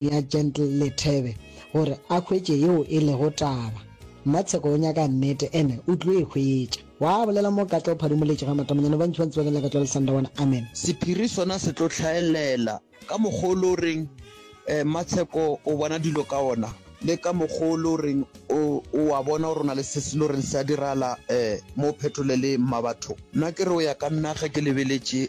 ya Gentle Lethebe gore a hwetše yeo e lego taba. Mmatsheko o nyaka nnete ene o tlo e hwetša. Wa bolela mo Katla o phadimoletše ga matamanyane ba ntšhi ba ntse ba kenela Katla le Sandawana. Amen. Sephiri sona se tlo hlaelela ka mokgwa o le o reng Mmatsheko o bona dilo ka ona le ka mokgwa o le o reng o a bona gore o na le se se le goreng se a diragala mo Phetolele Mmabatho. Nna ke re o ya ka nna ge ke lebeletše.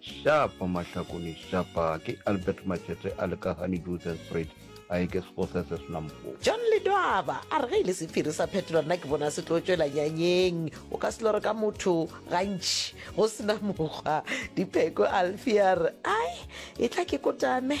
Shapa Mahlakone Shapa ke Albert Matšete a Lekagane Joseph Fred a e ke Sekgosese Senampo. John Ledwaba a re ge e le sephiri sa phetolo nna ke bona se tlo tšwela nyanyeng o ka selo re ka motho gantši go sena mokgwa dipheko alfi a re ai e tla ke kotame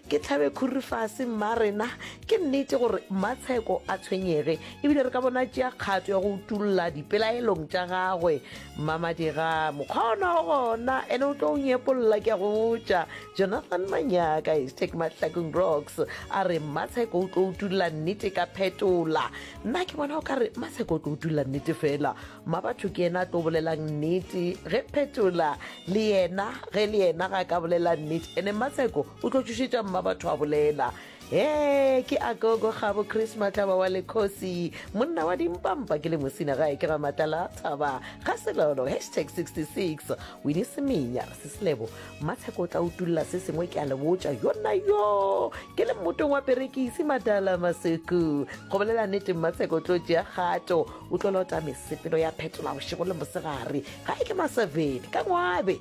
ke tlhabe khuri fase mma rena ke nnete gore mmatsheko a tshwenyege ebile re ka bona tšea kgato ya go utulla dipelaelong tša gagwe Mmamadira, mokgwa ona o gona ene o tlo o nyepolla ke a go botša. Jonathan Manyaka is take Mahlakong Rocks a re Mmatsheko o tlo utulla nnete ka phetola. Nna ke bona o ka re Mmatsheko o tlo utulla nnete fela. Mmabatho ke ena a tlo bolelang nnete ge phetola le yena ge le yena ga ka bolela nnete ene Mmatsheko o tlo tšošetša Mmabatho a bolela. Hee, ke Agogo Kgabo Chris Matlaba wa Lekgosi, monna wa dimpampa ke le mosina gae ke ga Matlala Thaba ga Selolo hashtag 66 Winnie Semenya re seselebo Matsheko o tla utulla se sengwe ke a le botša yona yo ke le mmotong wa perekisi Matala Maseku go bolela nnete Matsheko o tlo tšea kgato o tlo lota mesepelo ya phetola bošego le mosegare gae ke maseveni ka ngwabe